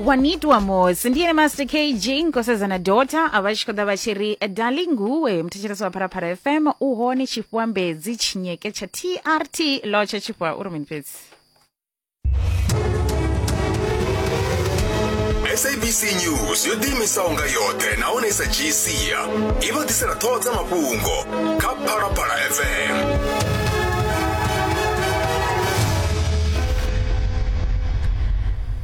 wanitwa mos ndiye master kg nkosazana dota ava tshi khou ḓa vha tshi ri darling nguwe muthetshelesi wa pharapara fm u hone tshifhiwa mbedzi tshinyeke tsha trt lotsha tshifhiwa uri mini fhedzi sabc news yo ḓiimisaho nga yoṱhe nahone i sa dzhii sia i vha ḓisela ṱhoho dza mafhungo kha phalaphala fm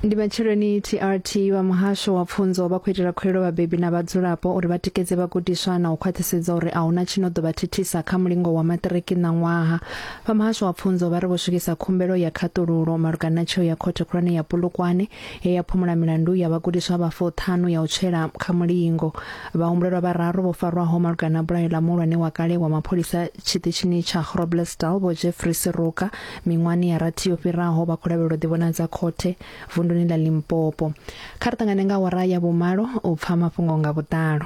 ndi matsheloni trt wa muhasho wa pfunzo vha khou itela khuelo vhabebi na vhadzulapo uri vha tikedze vhagudiswa na u khwaṱhisedza uri a huna tshi no ḓo vha thithisa kha mulingo wa maṱiriki na ṅwaha vha muhasho wa pfunzo vha ri vho swikisa khumbelo ya khaṱululo malugana na tsheo ya khothe khulwane ya pulukwane ye ya phumula milandu ya vhagudiswa vha fuṱhanu ya u tswela kha mulingo. Vhahumbulelwa vhararu vho farwaho malugana na bulayo ḽa muhulwane wa kale wa mapholisa tshiṱitshini tsha Groblersdal Vho Jeffrey Seruka miṅwahani ya rathi yo fhiraho vha khou lavhelelwa ḓivhonadza khothe vunduni ḽa Limpopo. Kha ri ṱangane nga awara ya vhumalo u pfa mafhungo nga vhuḓalo.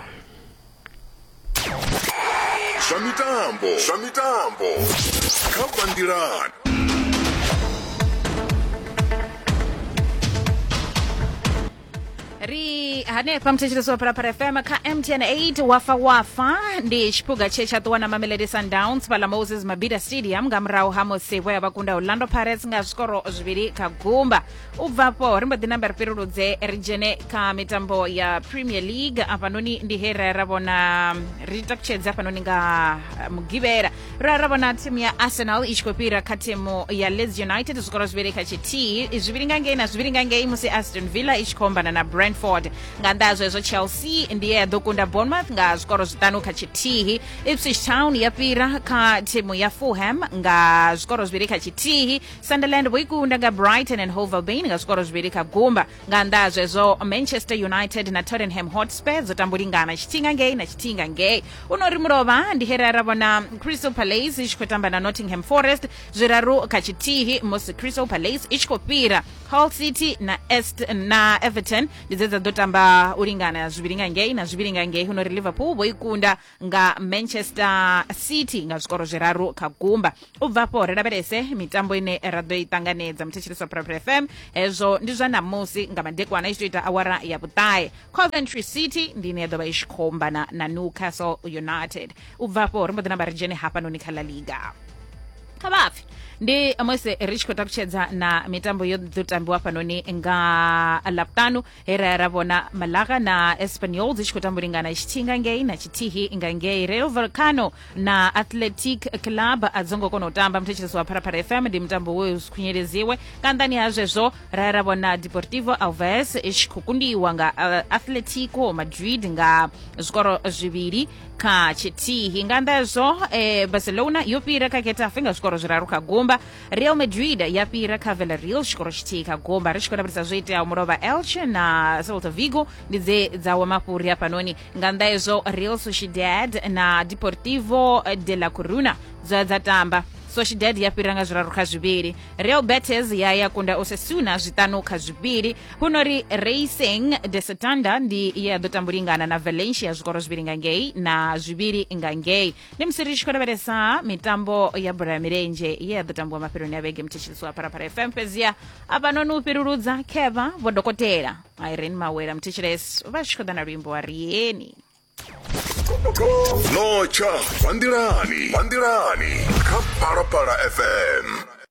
zwa mitambo zwa mitambo kha bandilan ri hanefha muthetshelesi wa phalaphala fm kha mtn 8 wafa wafa ndi tshiphuga tshe tsha ṱuwa na mamelodi sundowns fhala moses mabida stadium nga murahu ha musi vho ya vha kunda orlando pirates nga zwikoro zwivhili kha gumba u bva afho ri mbo ḓi namba ri fhiruludze ri dzhene kha mitambo ya premier league afhanoni ndi he ra ra vhona ri takutshedze afhanoni nga eh, mugivhela ra ra vhona thimu ya arsenal i tshi khou fhira kha thimu ya leeds united zwikoro zwivhili kha tshithihi zwivhili nga ngei na zwivhili nga ngei musi aston villa i tshi khou ombana na brentford nga nnḓa ha zwezwo chelsea ndi ye ya ḓo kunda bournemouth nga zwikoro zwiṱanu kha tshithihi ipswich town ya fhira kha thimu ya fulham nga zwikoro zwivhili kha tshithihi sunderland vho i kunda nga brighton and hove albion nga zwikoro zwivhili kha gumba nga nnḓa ha zwezwo manchester united na tottenham hotspur dzo tambulingana tshithinga ngei na tshithinga ngei u no ri mulovha ndi here ra vhona crystal palace i tshi khou tamba na nottingham forest zwiraru kha tshithihi musi crystal palace i tshi khou fhira hull city na, Est, na everton ndi dze dza ḓo tamba u lingana zwivhili nga ngei na zwivhili nga ngei u no ri liverpool vho i kunda nga manchester city nga zwikoro zwiraru kha gumba u bva afho ri lavhelese mitambo ine ra ḓo i ṱanganedza muthetshelesi wa private fm hezwo ndi zwa ṋamusi nga madekwana i tshi to ita awara ya vhuṱahe coventry city ndi ine ya ḓo vha i tshi khou ombana na newcastle united u bva afho ri mbo ḓi namba ri dzhene hafhanoni kha la liga kha vhapfi ndi musi ri tshi khou takutshedza na mitambo yo ḓo tambiwa fhanoni nga ḽavhuṱanu he ra ya ra vhona malaga na espanyol dzi tshi khou tambulingana tshithihi nga ngei na tshithihi nga ngei real volcano na athletic club a dzo ngo kona u tamba muthetshelesi wa pharapara fm ndi mutambo we u khunyeredziwe nga nḓani ha zwezwo ra ya ra vhona deportivo alves i tshi khou kundiwa nga uh, atletico madrid nga zwikoro zwivhili kha tshithihi nga nnḓa hezwo eh, barcelona yo fhira kha getafe nga zwikoro zwiraru kha gumba real madrid ya fhira kha villarreal tshikoro tshithihi kha gomba ri tshi khou lavhelesa zwo iteaho mulovha elche na celta vigo ndi dze dza wa mafhuri hafhanoni nga nnḓa hezwo real sociedad na deportivo de la coruna dzoya dza tamba sociedad ya fhira nga zwiraru kha zwivhili real betes ya ya kunda osasuna zwiṱanu kha zwivhili huno ri racing de setanda ndi ye ya ḓo tambulingana na valencia zwikoro zwivhili nga ngei na zwivhili nga ngei ndi musi ri tshi khou lavhelesa mitambo ya bola ya milenzhe ye ya ḓo tambiwa mafheloni a vhege mthetshelisi wa pharapara fm fhedziha avhanoni u fhiruludza kheva vho dokotela irene mawela mthetshelesi vha tshi khou ḓa na luimbo wa rieni notsha vhanḓilani vhanḓilani kha phalaphala fm